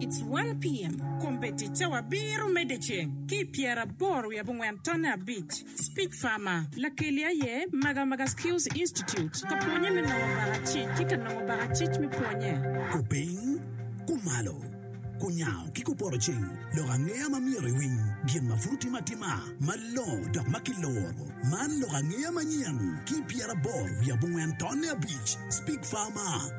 It's one PM, Kombe ticce wa biro medde ceng ki i pyera aboro wiye abongwen tonne abic. Speech Farmer, Lakeli aye Maga Maga Skills Institute ka pwonye me nongo baka cic ki ka nongo baka cic me pwonye. Kupiny, kumalo, kunyango ki kupoto ceng lok angeya ma myero iwiny gin ma pud otim atima malongo dok ma kiluro. Man lok angeya manyen ki i pyera aboro wiye abongwen tonne abic. Speech Farmer,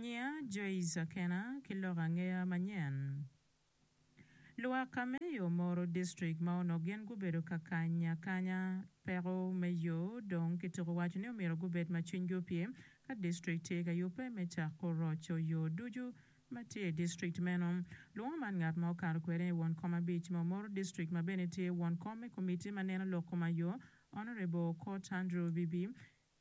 Nyinga Joyce Akena ki lok angeya manyen. Lwak Kameyo Moro District ma onongo gin gubedo ka kany akanya peko me yo dong kituko waco ni omyero gubed ma cwinygi opye ka district tye ka yubbe me cako roco yo ducu ma tye i district meno. Lwongo man ngat ma okato kwede ni won kom abic me Omoro District ma bene tye won kom me komitti ma neno lok koma yo Honourable Okot Andrew Bibi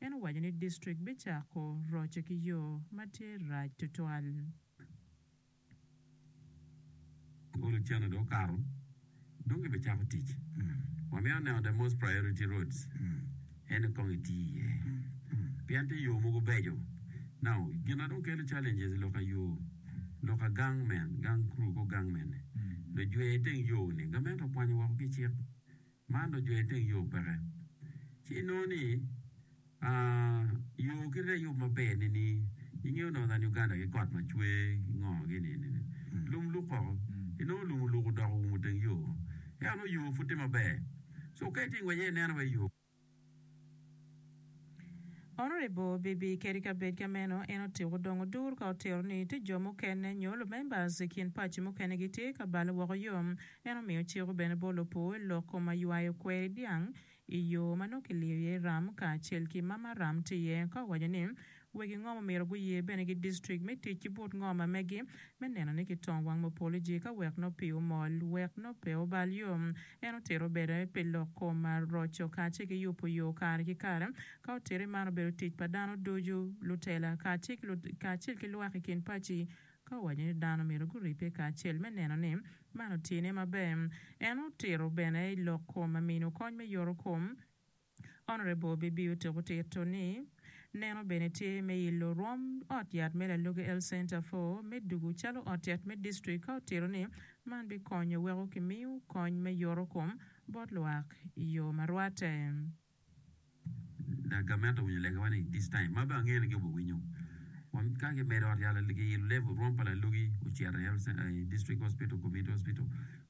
En owaco ni distrik bicako roce ki yo ma tye rac tutwal. Kong lacen-nu dong okato, dong gibicako tic. Wamito neno the most priority roads ene kong iti iye, pien tye yo mogo beco. Now, gin ma dong kelo challenges loka yo, loka gang men, gang crew ko gang mene, lujwer iteng yo-ni, gamente okwanyo woko ki cik. Man dong jwer iteng yo peke. Ci inongo ni yo kit aye yub maber ni ni ingeyo dong dhan Uganda ki kot macwer ki ngo gi ni ni ni lum luk koko inongo lum oluk odoko oumo teng yo ento nongo yo pud tye maber so ka itye ngwec aye ineno wai yo Honorable Bibi kadi ka bed ka meno en otiko dong odur ka otero ni tye jo mukene nyo lumembers i kin paci mukene gitye ka bale woko yo. En omiyo ciko bene bot lopur i lok kom aywayo kweri dyang i yo ma nongo kiliyo iye ram kacel ki mama ram tye ka owaco ni Wegi ngom myero guye bene ki district me tic ki but ngom amegi me neno ni kitong wang mupoliji ka wek no pi omol wek no pe obal yo. En otito bene pi lok kom roco kace ki yupu yo kare ki kare. Ka otiti man obedo tic pa dano ducu, lutela kacel ki lwak i kin paci ka owaco ni dano myero guribbe kacel me neno ni man otine maber. En otito bene i lok kom mino kony me yoro kom. Honourable Bibi otyeko tito ni, Neno bene tye me ilo rwom ot yat me Lalogi Health Centre fo me dugu calo ot yat me district ka otito ni man bikonyo weko kimiyo kony me yoto kom bot lwak i yo ma rwatte. Dok gamente owinyo lega wa ni this time ma be angeyo ni gi obi winyo wa ka ki medo ot yat Lalogi ilo level rwom pa Lalogi ocito i district hospital, community hospital.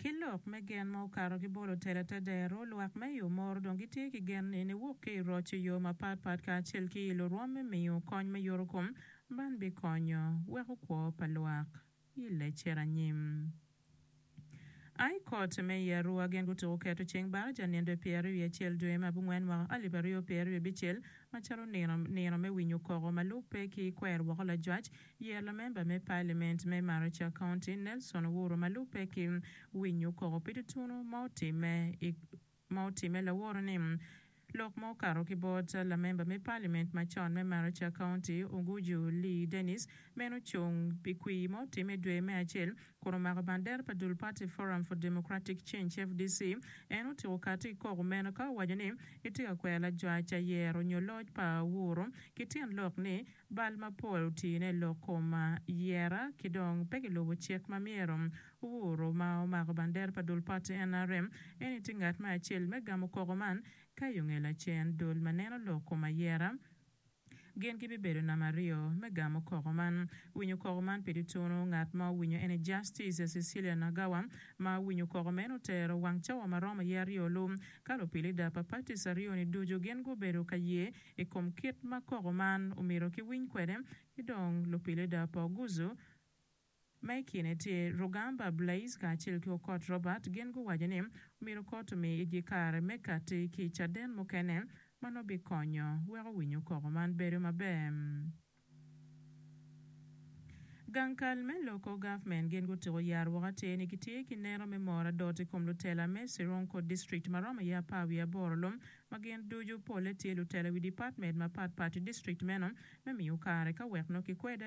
Ki lok me gen ma okato ki bolo tela te dero, lwak me i Omoro dong gitye ki gen ni niwok ki i roc i yo mapat pat kacel ki i lurwom me miyo kony me yurukom, man bikonyo weko kwo pa lwak i lecere anyim. High Court me i Arua gin gutuko keto ceng baraja nindo i pyeraryo wiye acel dwe me abongwen mwaka alip aryo pyeraryo abicel macalo nino me winyo koko ma lubbe ki kwer woko lajwac Yeya lamemba me Pailiment me Maricak County Nelson Owuro ma lubbe ki winyo koko pi tutunu ma otimme i ma otimme laworo ni lok ma okato ki bot lamemba me Pailiment macon me Maricak County Oguju Lee Dennis meno ocung pi kwir ma otimme i dwe me acel kun omako bandera pa dul pati Forum for Democratic Change, FDC, en otyeko kati i koko meno ka owaco ni gitye ka kwero lajwac ayero nyo loc pa Owuro ki tyen lok ni Bal mapol otine lok kom yera ki dong pe gilubo cik ma myero Ouru ma omako bandera pa dul pati nrm eni tye ngat me acel me gamo koko man ka i onge lacen dul ma neno lok kom ayera gin gi bibedo namba aryo me gamo koko man. Winyo koko man pedi tunu ngat ma owinyo eni Justice Cecilia Nagawa ma winyo koko meno otero wang cawa maromo ye aryo lu ka lupilida pa parties aryo ni ducu gin gubedo ka ye i kom kit ma koko man omyero kiwiny kwede, ki dong lupilida pa Oguzu ma i kine tye Rugamba Blaise kacel ki Okot Robert gin guwaco ni omyero kot omi igi kare me kati ki caden mukene ma nongo bikonyo weko winyo koko man bedo maber. Gang kal me loko government gin gutiko yaro woko atir ni gitye ki neno me moro adot ikom lutela me Sironko district maromo aye apar wiye aboro lom ma gin ducu polle tye lutela iwi department mapat pat idistrict meno me miyo kare ka wek nongo kikwede